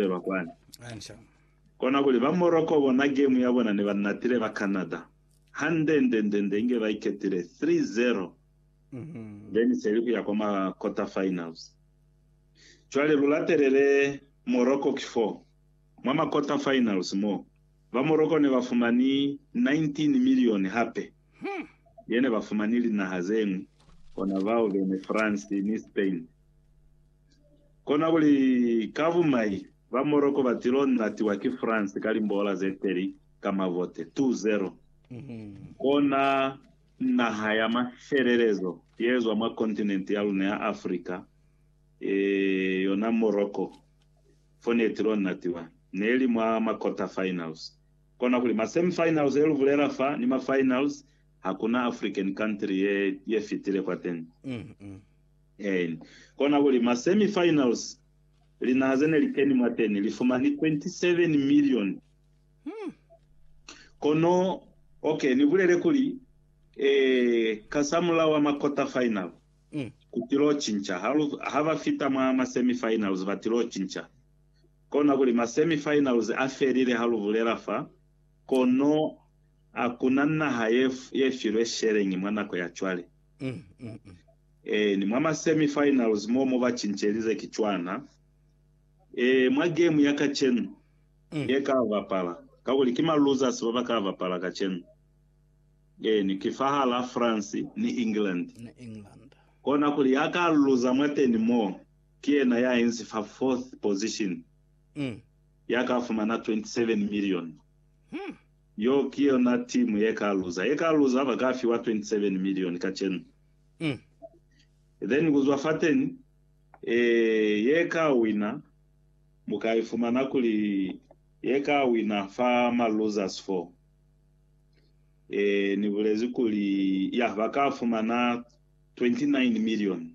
feba kwani. Kona kuli ba Morocco bona gemu ya bona ni ba natile ba Canada hande nde nde nde inge ba iketile 3-0 then seli kuya kwa ma quarter finals. Cwale lu latelele Morocco ki fo mwa ma quarter finals mo ba Morocco ne ba fumani 19 million hape. Hum! Ye ne ba fumani linaha ze ñwi, kona bao bene France ni Spain. Kona kuli, ka bumai, ba Morocco ba tilo natiwa ki France ka limboola ze teli ka mavote 2-0. Kona naha ya mafelelezo ye zwa mwa kontinente ya luna ya Africa, e, yona Morocco, fo ne tilo natiwa. Neli mwa ma quarter finals. Kona kuli ma semi finals ye lu bulela fa ni ma finals hakuna African country ye ye fitile kwateni. Ein. Kona kuli ma semi finals linaha zene li keni mwateni li fumani 27 million. Kono ok ni bulele kuli eh kasamulaho wa ma quarter final kutilo cinca ha lu ha ba fita mwa ma semi finals batilo cinca Kona kuli ma semi finals a felile ha lu bulela fa, kono hakuna naha ye ye filwe sheleñi mwa nako ya cwale. Ee, ni mwa ma semi finals mo mo ba cincelize ki cwana. Ee, mwa game ya kacenu ye ka bapala, kakuli ki ma losers ba ba ka bapala kacenu. Eeni, ki fahal'a France ni England. Kona kuli ya ka luza mwateni mo. Ki yena ya inzi fa fourth position, ya ka fumana 27 million. Yo ki yona team ye ka luza. Ye ka luza ba ka fiwa 27 million kacenu. Then ku zwa fateni, eh, ye ka wina, mu ka ifumana kuli ye ka wina fa ma losers foo. Eh, ni bulezi kuli, yah, ba ka fumana 29 million.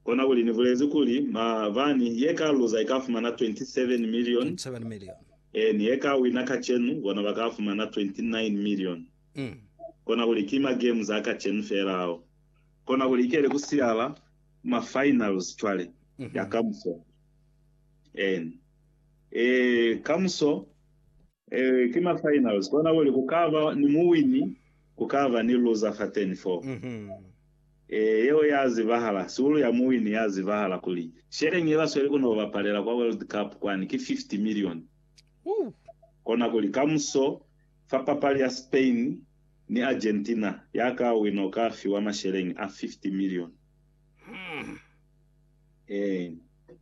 Kona kuli ni bulezi kuli, ma bani, ye ka luza i ka fumana 27 milioni, eeni, ye ka wina kacenu, bona ba ka fumana 29 milioni. Kona kuli ki ma games a kacenu fela ao. Kona kuli ikele ku siyala ma finals cwale, ya kamuso. Eeni. Ee, kamuso, ee, ki ma finals. Kona kuli ku ka ba ni muwini, ku ka ba ni luza fateni foo. Ee, yeo ya zibahala. Sihulu ya muwini ya zibahala kuli, Sheleng ye ba sweli ku no bapalela kwa World Cup kwani ki 50 milioni. Kona kuli, kamuso, fa papali ya Spain ni Argentina, ya ka wina u ka fiwa masheleng a 50 milioni. Ee,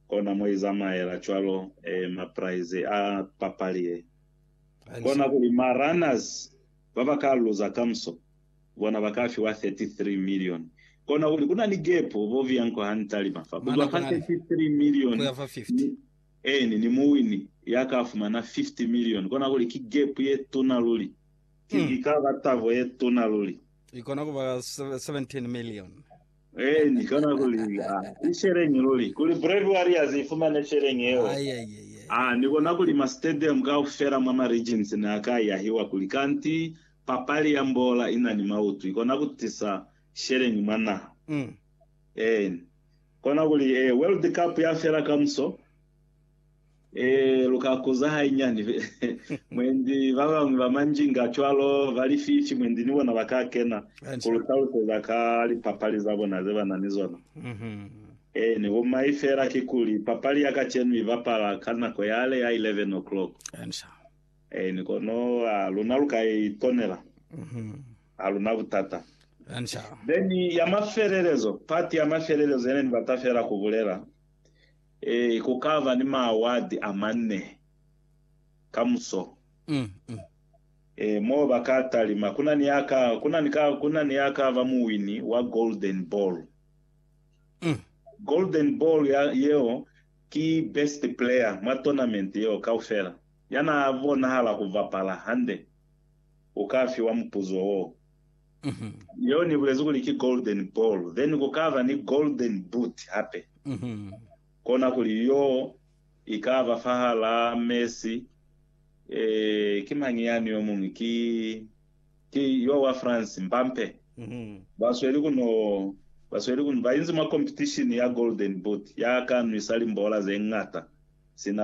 kona mo i zamaela cwalo, ee, mapraize a papali ye. Kona kuli, ma-runners ba ba ka luza kamuso, Bona ba ka fiwa 33 milioni. Kona kuli ku na ni gepu bo viya nko ha ni talima fa. Ku zwa fa 33 milioni ni, eeni, ni muwini ya ka fumana 50 milioni, kona kuli ki gepu ye tuna luli. Ki, i ka ba tabo ye tuna luli. I kona ku ba 17 milioni. Ee, ni kona ku li, A, i sheleñi luli, kuli Brave Warriors i fumane sheleñi yeo. Ai, ai, ai, ai. A, ni kona ku li, ma stadium kaufela mwa ma regions ne a ka yahiwa kuli, kanti papali ya mbola i na ni mautu, i kona ku tisa sheleñi mwa naha. Mm. Ee, ni kona ku li, Ee, World Cup ya fela kamuso. Ee, lu ka kuza hainyani. Mwendi ba bañwi ba manjinga cwalo ba lififi, mwendi ni bona ba ka kena ku lu taluseza ka lipapali za bona ze ba na ni zona. Ee, ni bumai feela kikuli papali ya kacenu i bapala ka nako yale ya 11 o'clock. Ee, ni kono a luna lu ka i ponela. Ha lu na butata. Then ya mafelelezo, part ya mafelelezo ye ne ni bata feela ku bulela, Ee, ku ka ba ni maawadi a manne ka muso. Ee, moo ba ka talima. Ku na ni ya ka, ku na ni ka, ku na ni ya ka ba muwini wa Golden Ball. Golden Ball ya, yeo ki best player mwa tournament yeo kaufela. Ya na bonahala ku bapala hande u ka fiwa mupuzo woo. Yeo ni bulezi kuli ki golden ball, then ku kaba ni golden boot hape. Kona kuli yo i kaba fahala Messi, eh, ki mañi yani yomuñwi, ki, ki yo wa France, Mbappe. Ba sweli ku no, ba sweli ku, ba inzi mwa competition ya golden boot, ya ka nwisa limbola ze ñata sina